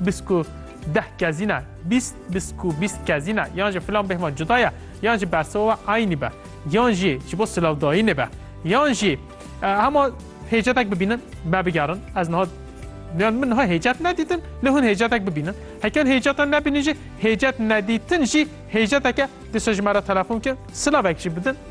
Bisk û deh kezîn e, bîst, bisk û bîst kezîn e yan jî filan bêhma cuda ye yan jî bersiva we eynî be yan jî ji bo silavdayînê be yan jî hema hêcetek bibînin me bigerin ez niha yan min niha hêcet nedîtin lê hûn hêcetek bibînin heke hûn hêceta nebînin jî hêcet nedîtin jî hêceteke dîsa ji me re telefon kin silavek jî bidin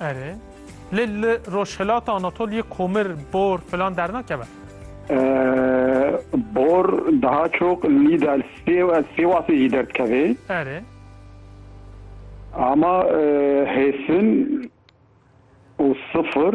Erê, lê li Rojhilata Anatoliyê komir, bor filan dernakeve? Bor daha çok lîda Sêwasê jî derdikevê. Erê. Ama hêsin û sifir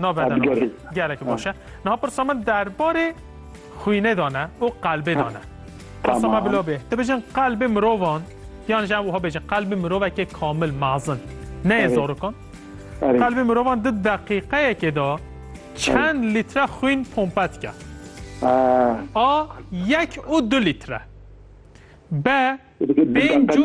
Navê de navê. Gelek baş e. Niha pirsa min derbarê xwînê de ne û qelbê de ne. Pirsa me bila bê. Tu bijin qelbê mirovan yan ji ev wiha bêjin qelbê mirovekê kamil mezin. Neyê zarokan. Qelbê mirovan di deqîqeyekê de çend lître xwîn pompe dike. A yek û du lître. B pênc û